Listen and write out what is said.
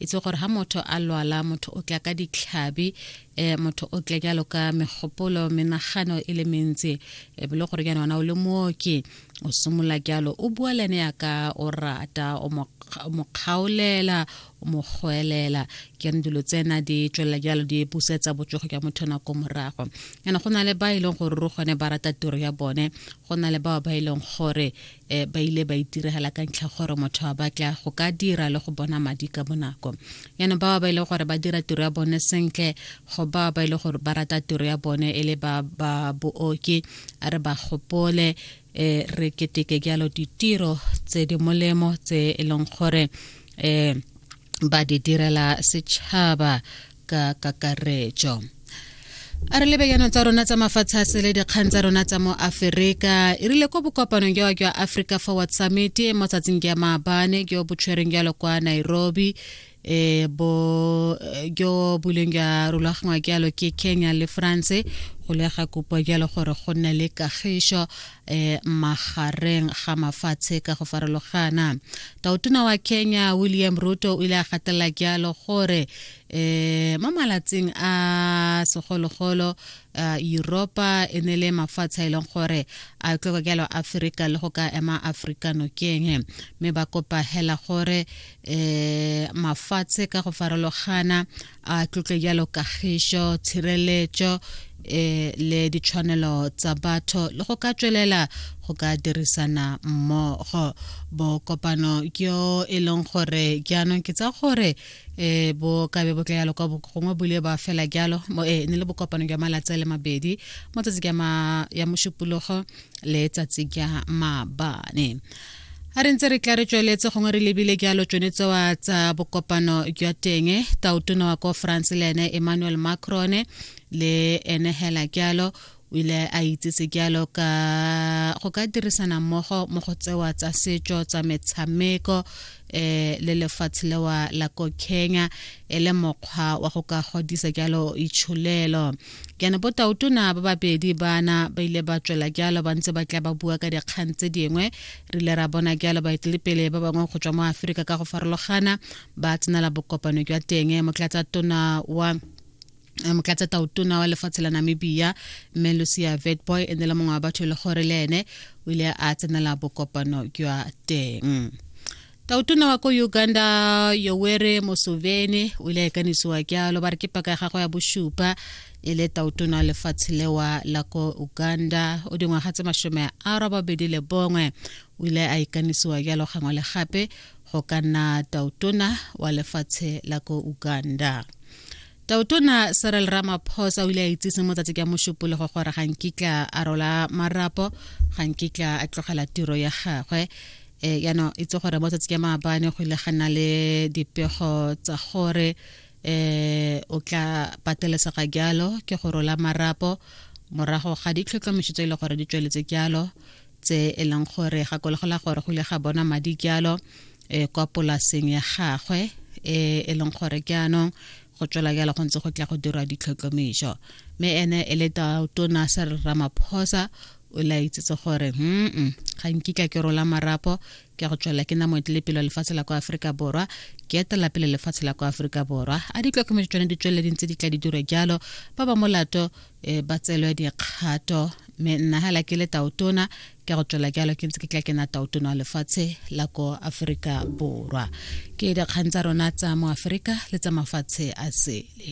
itse gore ha motho a lwala motho o tla ka ditlhabi eh motho o tla jalo ka megopolo menagano e le mentsi e bile gore ke ona o le mooki o simola jalo o bua le ene ya ka o rata o mo kgaolela o mo goelela ke re dilo tsena di tswelela jalo di busetsa botsogo jwa motho nako morago yana go na le ba e leng gore ro gone ba rata tiro ya bone go na le bao ba e leng gore e ba ile ba itiregela ka ntlha gore motho a batla go ka dira le go bona madi ka bonako yana ba ba ile gore ba dira tiro ya bone sentle go ba ba ile gore ba rata tiro ya bone e le ba ba booki a re ba gopole e re keteke jalo ditiro tse di molemo tse e leng gore e ba di direla setšhaba ka kakaretso a re lebeyanong tsa rona tsa mafatshe a sele dikgang tsa rona tsa mo aferika e rile ko bokopanong jwa jwa africa forward summit mo tsatsing jwa maabane jo bo tshwereng jalo kwa nairobi e bo jo buleng jwa rulagangwa jalo ke kenya le france go lega kopo jalo gore go nne le kagišo eh magareng ga mafatshe ka go farologana tautona wa kenya william ruto o ile a gatelela jalo gore eh mo malatsing a segologolo uh, europa e ne le mafatshe a e leng gore a tloko jalo aforika le go ka ema aforika nokeng mme ba kopa hela gore eh mafatshe ka go farologana a tlotle jalo kagišo tshireletso eh le ditshwanelo tsa batho le go ka tswelela go ka dirisana mmogo bo kopano ke yo e leng gore jaanong ke tsa gore eh bo ka be bo tla yalo kwa gongwe bule ba fela jalo mo eh ne le bokopano jwa malatsi a le mabedi mo tsatsi ya ma ya moshupulogo le tsatsi ya mabane a re ntse re tla re tsweletse gongwe re lebile jalo tsone tsewa tsa bokopano jwa teng taotona wa ko france le ene emmanuel macron le ene hela jalo o ile a itsese jalo ka go ka dirisana mmogo mo go tsewa tsa setso tsa metshameko eh le lefatshe lewa la ko kenya e le mokgwa wa go ka godisa jalo itsholelo Jaana botaotona ba babedi baana ba ile ba tswela jalo ba ntse ba tla ba bua ka dikgang tse dingwe. Re ile ra bona jalo baetelepele ba bangwe go tswa mo Aforika ka go farologana ba tsenela bokopano jwa teng. Motlatsa tona wa eh, motlatsa taotona wa lefatshe la Namibia mme Lucia Vetboy e ne le mongwe wa batho e le gore le ene o ile a tsenela bokopano jwa teng. tautona wa ko uganda yowere mosoveni o ile a ikanisiwa kyalo ba re ke paka ya gagwe ya bošupa e le tautona lefatshe lewa la ko uganda o dingwaga tse masome a robabedi le bongwe o ile a ikanisiwa kyalo gangwe le gape go ka nna tautona wa lefatshe la ko uganda tautona serel ramaphosa o ile a itsise mo tsatsi ka mošupologo gore ga nkitla a rola marapo ga nkitla a tlogela tiro ya gagwe um yaanong itse gore mo tsatsi ka maabane go ile ga nna le dipego tsa gore eh o tla patelesega jalo ke go rola marapo morago ga ditlhotlhomišo tse e le gore di tsweletse jalo tse e leng gore gakologola gore go ile ga bona madi jalo e kwa polaseng ya gagwe e e leng gore ke anong go tswela jalo go ntse go tla go dirwa ditlhotlhomiso mme ene e le tona sa ramaphosa o la itsetse gore mm ga nkitla ke rola marapo ke go tswela ke namo tle pele lefatshe la kwa Afrika Borwa ke etela pele lefatshe la kwa Afrika Borwa a di tlhokomedi tsone di tswele dintse di tla di dire jalo ba ba molato eh, ba tselwe dikgato me nna hela ke le taotona ke go tswela jalo ke ntse ke tla kena tautono lefatshe la ko aforika borwa ke dikgang tsa rona tsa mo aforika le tsa mafatshe a sele